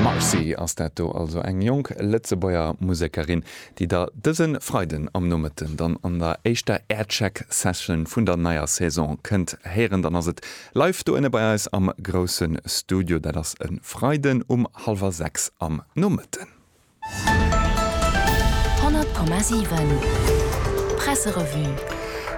Marcy ass dat do also, eng jonk Lëtzebuerger Musekerin, déi der dëse Freiden am Nomëtten dann an der éischter Aircheck Session vun der neier Saison kënnt héieren. Dann ass et live do ënne bei eis am grousse Studio, dat ass e Freiden um hallwer sechs am Nomëtten. 100,7 Presserevue.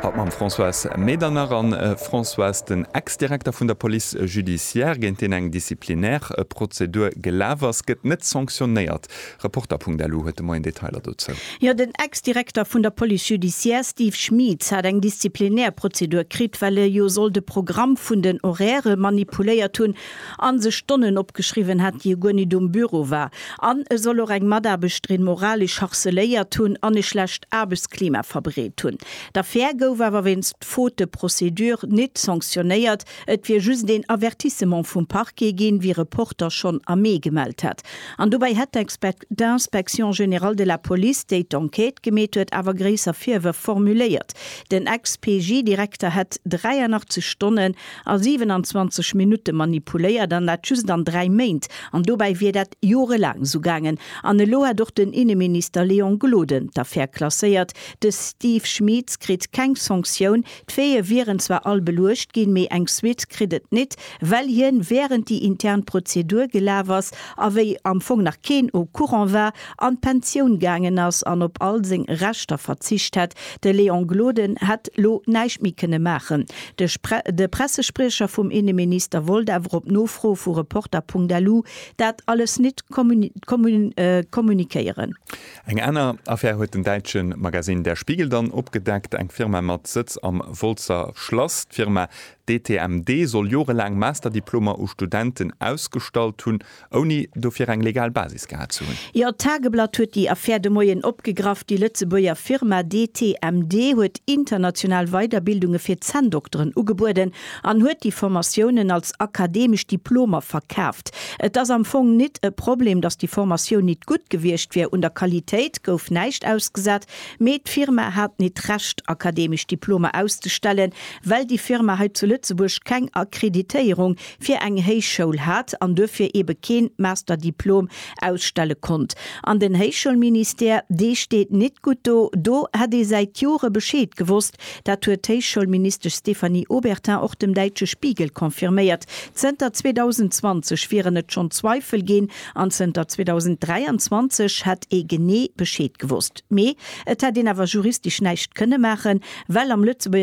Haut mam Françoise Medernach an Françoise, den Ex-Direkter vun der Police judiciaire, géint deen eng Disciplinaire Prozedur gelaf ass, gëtt net sanctionnéiert. Reporter.lu huet de Moien Detailer dozou. Jo, den Ex-Direkter vun der Police judiciaire Steve Schmieetz hat eng Disziplinaire Prozedur kritt, well e jo soll de Programm vun den Horairë manipuléiert hunn an sech Stonnen opgeschriwwen hat, déi e guer nit um Büro war, an e soll och eng Mataarbechterin moralesch harceléiert hunn an e schlecht Aarbechtsklima verbreet hunn. D'Affär gouf awer wéinst Faute de procédure nit sanctionnéiert, et wier just een Avertissement vum Parquet ginn, wéi Reporter schonn am Mee gemellt hat. An dobäi hätt d'Inspection générale de la police, déi d'Enquête gemeet huet, awer gréisser Virwërf formuléiert. Den Ex-PJ-Direkter hätt 83 Stonnen a 27 Minutte manipuléiert, an dat just an dräi Méint, an dobäi wier dat jorelaang esou gaangen. An elo hätt och den Inneminister Léon Gloden d'Affär klasséiert. De Steve Schmeetz kritt keng Sanktioun. D'Veeë wieren zwar all beluecht ginn, mee eng Suite kritt et nit, well hien, wärend déi intern Prozedur gelaf ass a wéi am Fong nach keen au courant war, an d'Pensioun gaangen ass an op all seng Rechter verzicht hätt. De Léon Gloden hätt lo näischt méi kënne maachen. De Pressespriecher vum Inneminister wollt awer op Nofro vu Reporter.lu dat alles nit kommunikéieren. Eng aner Affär huet den däitsche Magasinn Der Spiegel dann opgedeckt, eng Firma mat Sëtz am Wolzer Schlass. D'Firma DTMD soll jorelaang Masterdiplomer u Studenten ausgestallt hunn. Ouni dofir eng legal Basis gehat ze hunn. Jo, d'Tageblatt huet déi Affär de Moien opgegraff. Déi Lëtzebuerger Firma DTMD huet international Weiderbildunge fir Zänndokteren ugebueden an huet déi Formatiounen als akademesch Diplomer verkaaft. Et ass am Fong nit e Problem, datt déi Formatioun nit gutt gewiescht wier. Un der Qualitéit gouf näischt ausgesat, mee d'Firma hat nit d'Recht, akademesch Diplomer auszestellen, well déi Firma hei zu Lëtzebuerg keng Akkreditéierung fir eng Héichschoul hat an duerfir ebe keen Masterdiplom ausstelle konnt. An den Héichschoulministère, dee steet nit gutt do. Do hätt ee säit Jore Bescheed gewosst. Dat huet d'Héichschoulministesch Stéphanie Obertin och dem däitsche Spiegel confirméiert. Zënter 2020 wieren et schonn Zweifel ginn an zënter 2023 hätt ee genee Bescheed gewosst. Mee et hätt een awer juristisch näischt kënne maachen, well am Lëtzebuerger